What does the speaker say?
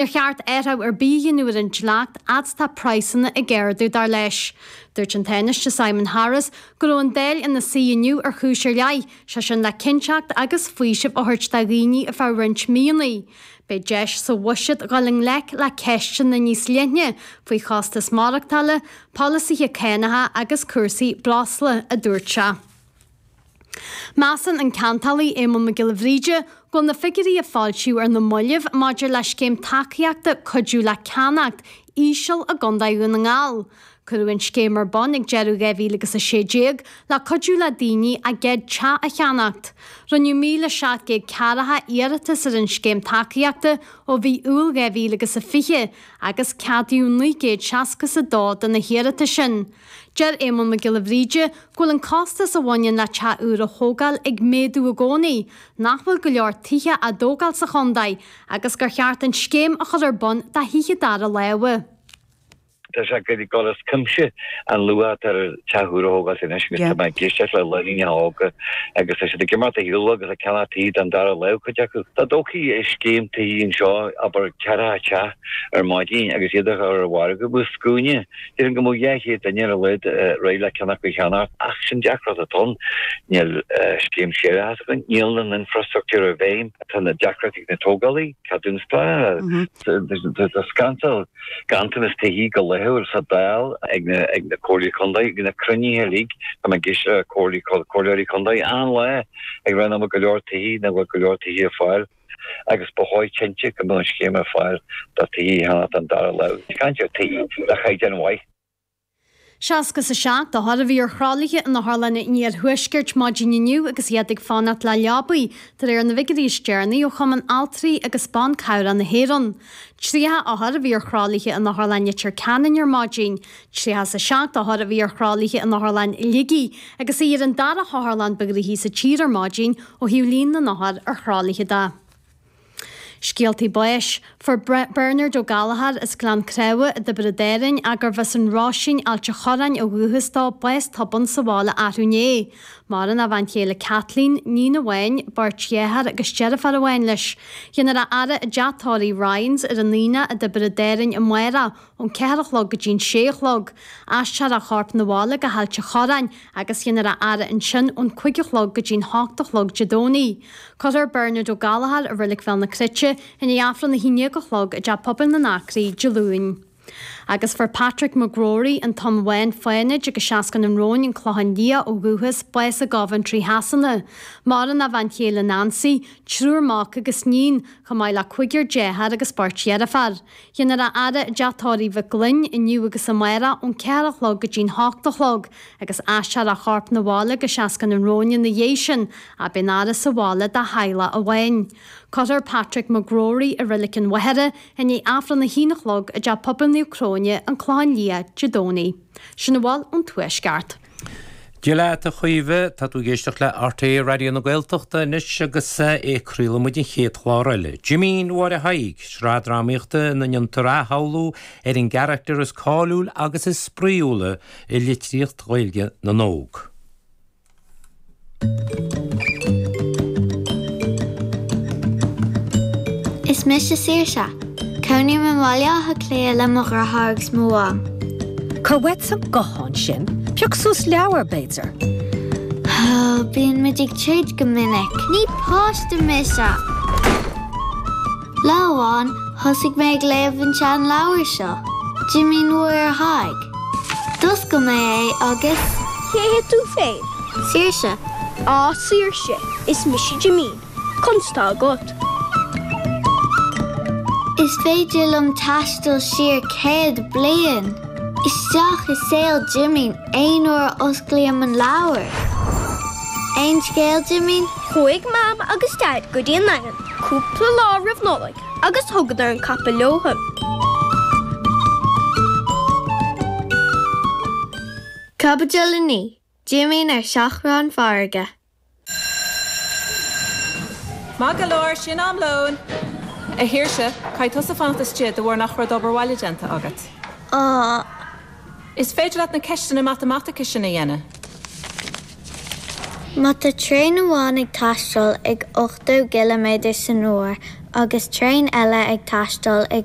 Níor cheart athrú ar bith a dhéanamh ar an dleacht fhad is atá praghsanna ag ardú, dar leis. Dúirt an Tánaiste Simon Harris go raibh an Dáil ina suí inniu ar chúis ar leith, sé sin le cinnteacht agus faoiseamh a thabhairt do dhaoine ar feadh roinnt míonnaí. Beidh deis sa bhuiséad dhul i ngleic le ceisteanna níos leithne faoi chostas maireachtála, polasaithe cánacha agus cúrsaí breosla, a dúirt sé. Measann an ceantálaí Éamonn Mac Giolla Bhríde go bhfuil na figiúirí a foilsíodh ar na mallaibh maidir le scéim tacaíochta cuidiú le ceannacht íseal i gContae Dhún na nGall. Cuireadh an scéim ar bun ag deireadh 2016 le cuidiú le daoine a gcéad teach a cheannacht. Rinneadh 1,740 iarratas ar an scéim tacaíochta ó mhí Iúil 2020 agus ceadaíodh 962 de na hiarratais sin. Deir Éamonn Mac Giolla Bhríde go bhfuil an costas a bhaineann le teach úr a thógáil ag méadú i gcónaí, nach bhfuil go leor tithe á dtógáil sa chontae agus gur cheart an scéim a chur ar bun do thithe dara láimhe. Tá sé ag dul as cuimse an luach atá ar theach úr a thógáil anois agus tá mé ag éisteacht le lánúineacha óga agus tá siad ag imeacht a shaolú agus ag ceannach tithe den dara láimh, cuid acu. Dá dtógfaí scéim tithíochta anseo, abair ceathracha teach ar maidin agus iad a chur ar an mhargadh i scuaine, Déarfainn go mbeadh dhá chéad duine ar a laghad réidh le ceann acu a cheannacht ach sin an deacracht atá ann. Níl scéim séarachais againn, níl an infreastruchtúr i bhfeidhm, tá na deacrachtaí ag na tógálaí, ceadúnas pleanála, tá siad ag caint ar ghanntanas tithe go laethúil sa Dáil ag na comhairlí contae, bíonn na cruinnithe uilig, tá mé ag éisteacht le comhairleoirí contae achan lá ag ráit nach bhfuil go leor tithe, nach bhfuil go leor tithe ar fáil. agus ba chóir cinnte go mbeadh an scéim ar fáil do thithe a cheannacht den dara láimh. Is caint ar thithe le caighdeán mhaith. 67 othar a bhí ar thralaithe in otharlanna an iarthuaiscirt maidin inniu agus iad ag fanacht le leabaí, de réir na bhfigiuirí is deireanaí ó Chumann Altraí agus Ban Cabhrach na hÉireann. 30 othar a bhí ar thralaithe in Otharlann Leitir Ceanainn ar maidin. 37 othar a bhí ar thralaithe in Otharlann Shligigh agus í ar an dara hotharlann ba ghnoithí sa tír ar maidin ó thaobh líon na n-othar ar thralaithe de. Scéaltaí báis. Fuair Bernard Ó Gallchóir as Gleann Creamha i dTiobraid Árainn, a gurbh as an Roisín, Ailt an Chorráin ó dhúchas dó, bás tobann sa bháile arú inné. Maireann a bhean chéile Kathleen, iníon amháin, beirt dheartháir agus deirfiúr amháin leis. Dhéanfar a fhaire i dteach tórraimh Ryan's ar an Aonach i dTiobraid Árainn amárach. ón ceathair a chlog go dtí an sé a chlog. Aistreofar a chorp 'na bhaile go hAilt a' Chorráin agus déanfar a fhaire ansin ón cúig a chlog go dtí an hocht a chlog Dé Domhnaigh. Cuirfear Bernard O'Gallagher i Reilig Bhéal na Cruite i ndiaidh Aifreann a haon déag a chlog i dTeach Pobail na nAcraí Dé Luain. Agus fuair Patrick McGrory, An tSeanbhaile Fánaid agus Seascann an Róin, An Clochán Liath, ó dhúchas, bás i gCoventry Shasana. Maireann a bhean chéile Nancy, triúr mac agus níon, chomh maith le cúigear deartháir agus beirt dheirféar. Déanfar a fhaire i dTeach Tórraimh Mhic Fhloinn inniu agus amárach ón ceathair a chlog go dtí'n hocht a chlog agus aistreofar a chorp na bhaile go Seascann an Róin ina dhiaidh sin Beidh an fhaire sa bhaile dá theaghlach amháin. Cuirfear Patrick McGrory i Reilig an Mhachaire i ndiaidh Aifreann a haon a chlog i dTeach Pobail Naomh Cróine, An Clochán Liath, Dé Domhnaigh. Sin a bhfuil ón Tuaisceart. Dia leat, a Chaoimhe. Tá tú ag éisteacht le RTÉ Raidió na Gaeltachta anois agus é á chraoladh againn an chéad chlár eile, Jimín Mháire Thaidhg, sraith drámaíochta ina ndéantar athshamhlú ar an gcarachtar is cáiliúla agus is spraíúla i litríocht Ghaeilge na n-óg. Is mise Saoirse. Cónaím i mBaile Átha Cliath le mo dheartháir agus mo mham. Cuir uait an guthán sin? Pioc suas leabhar, b'fhéidir? Ó, bíonn muid ag troid go minic. Ní páiste mise! Lá amháin, thosaigh mé ag léamh an tseanleabhair seo, Jimín Mháire Thaidhg. D'oscail mé é agus. Cé hé tú féin? Saoirse. Á, Saoirse, is mise Jimín. Conas tá agat? Is féidir liom taisteal siar céad bliain, isteach i saol Jimín aon uair a osclaím an leabhar. Aon scéal, Jimín? Chuaigh Mam agus Daid go dtí an Daingean. cúpla lá roimh Nollaig agus thugadar an capall leo. Caibidil 9. Jimín ar seachrán farraige. Maith go leor, sin am lóin! A Shaoirse, caithfidh tusa fanacht istigh de bharr nach raibh d'obair bhaile déanta agat. Is féidir leat na ceisteanna matamaitice sin a dhéanamh. Má tá traein amháin ag taisteal ag 80 gciliméadar san uair agus traein eile ag taisteal ag